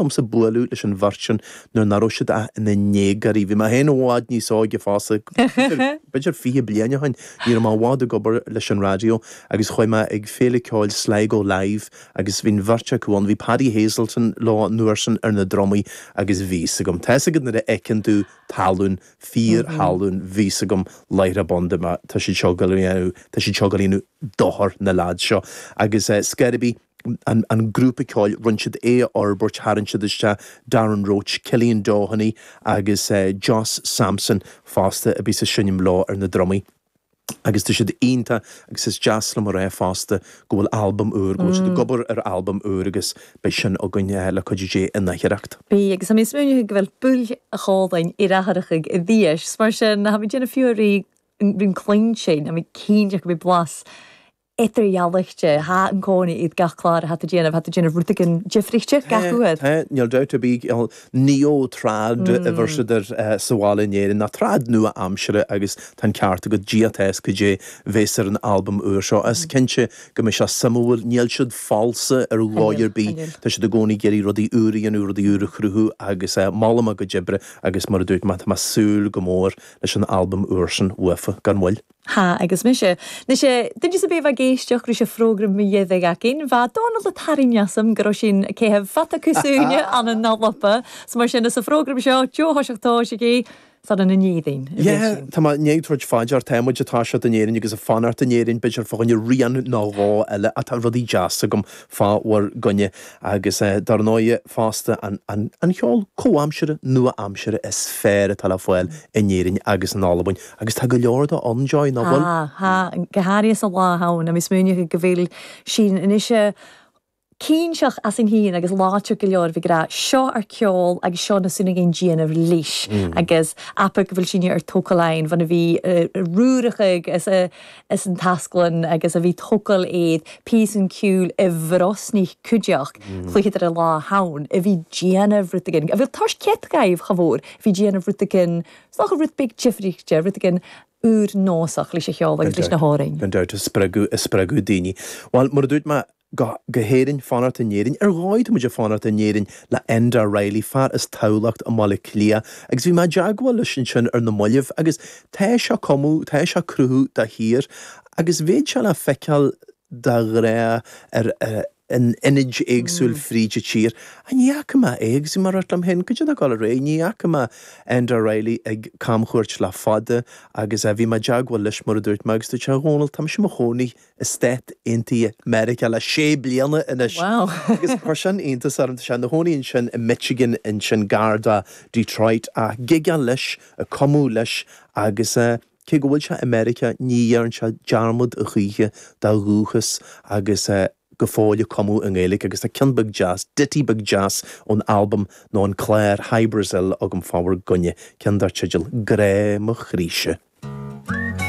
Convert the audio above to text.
domsa bualadh leis an bheirt sin nuair nach raibh siad ach ina ndéagóirí. Bhí mé féin i bhfad níos óige fosta, b'fhéidir, b'fhéidir fiche bliain ó shin. Ní raibh mé i bhfad ag obair leis an raidió agus chuaigh mé ag Féile Ceoil Sligo Live agus bhí an bheirt acu ann. Bhí Paddy Hazleton leo an uair sin ar na drumaí agus bhí fhios agam, tá fhios agat nuair a fheiceann tú tallann, fíorthallann, bhí fhios agam láithreach bonn, dúirt mé, tá siad seo ag déanamh, tá siad seo ag gabháil a dhéanamh dochar, na leaids seo. Agus Skerriby. an grúpa ceoil, rinne siad é a fhorbairt, tharraing siad isteach Darren Roche, Cillian Doheny agus Josh Sampson fosta a bhíos ag seinm leo ar na drumaí agus tá siad iontach agus is deas liom a rá fosta go bhfuil albam úr, go bhfuil siad ag obair ar albam úr agus beidh sin againn le cuidiú Dé in aichearracht. Bidh, agus tha mi a' smaoineachadh gu bheil buaidh Cholmáin Iarfharaich ag Dee-Ash, mar sin tha mi a' dèanamh fiughair ri, ri an cluinntinn, tha mi cinnteach gum bi blas eadar-dhealaichte. Tha an-còmhnaidh iad gach clàr tha iad a' dèanamh, tha iad a' dèanamh rudeigin diofraichte gach uair. Tá, níl dabht ar bith ann. Neo-trad a bheir siad air sa bhaile in Éirinn nó trad nua-aimseartha agus tá an ceart agat, ag Dia atá a fhios cad é bhéas ar an albam úr seo. Is cinnte go mbeidh sé suimiúil, níl siad falsa ar dhóigh ar bith, tá siad i gcónaí ag iarraidh rudaí úra a dhéanamh, rudaí úra a chruthú agus molaim a gcuid oibre agus mar a dúirt mé, tá mé ag súil go mór leis an albam úr sin uafa gan mhoill. Tha, agus mise. Nise duine sam bith a bha ag èisteachd ris a' phrògram mu dheireadh againn, bha Dónall a' tarraing asam gun robh sinn a' caitheamh fada cus ùine ann an Alba, so mar sin anns a' phrògram seo bho thoiseach tòiseachaidh 's ann ann an Èirinn a bhios sinn. Yeah, tá mé i ndiaidh tabhairt fá dear, tá muid ag toiseacht in Éirinn agus ag fanacht in Éirinn, b'fhéidir fá choinne rian nó dhó eile ach tá rudaí deas agam fá bhur gcoinne agus eh dar ndóighe fosta an, an, an cheol comhaimseartha, nua-aimseartha is fearr atá le fáil in Éirinn agus in Albain. Agus tá go leor de ann, Joy, nach bhfuil? Tá, go háirithe sa lá atá ann. Tá mé smaoinithe go bhfuil sinn anois cinnteach as an Shín agus láidir go leor bheith ag rá seo ár ceol agus seo na súna again Dia na rlís agus apaidh go bhfuil sinn ar tógáil ain bhun a bhí Ruarach ag as as an taisclann agus a bhí tógáil iad píos an ciúil i bhrosnaigh cuideach cluiche de lá a hann a bhí déanamh rud again a bhfuil toirt céadta gaibh chomh mhór bhí déanamh rud again a tha rud beag diofraichte, rudeigin ùr-nòsach leis a' cheòl agus leis na h-òrain. Gan dabht, ag spreagadh, ag spreagadh daoine. Bhuel, mar a dúirt mé go, go hÉirinn, fanacht in Éirinn, ar dhóigh tá muid ag fanacht in Éirinn le Enda Reilly, fear as Tamhlacht i mBaile Átha Cliath, agus bhí mé i dteagmháil leis ansin ar na mallaibh agus tá sé ag cumadh, tá sé ag cruthú de shíor, agus beidh sé le feiceáil dá ghrá ar na hionaid éagsúil fríd a tír. Á ní fhaca mé é agus mar a dúirt mé liom féin, go dtí an gála aréir, ní fhaca mé Enda Reilly ag camchuairt le fada agus á bhí mé i dteagmháil leis mar a dúirt mé agus dúirt sé, a Dhónaill, táimse i mo chónaí i Stáit Aontaithe Meiriceá le sé bliana anois agus chuir sin iontas orm, tá sé ina chónaí ansin i Michigan ansin gar do Detroit ag gigeáil leis, ag cumadh leis agus. Cé go bhfuil sé i Meiriceá ní dhéarn sé dearmad a choíche dá dhúchas agus é go fóill ag cumadh i nGaeilge agus tá ceann beag deas, ditty beag deas ón albam nó an clár Hy Brasil agam fá bhur gcoinne, ceann dar teideal 'Grá mo Chroíse'.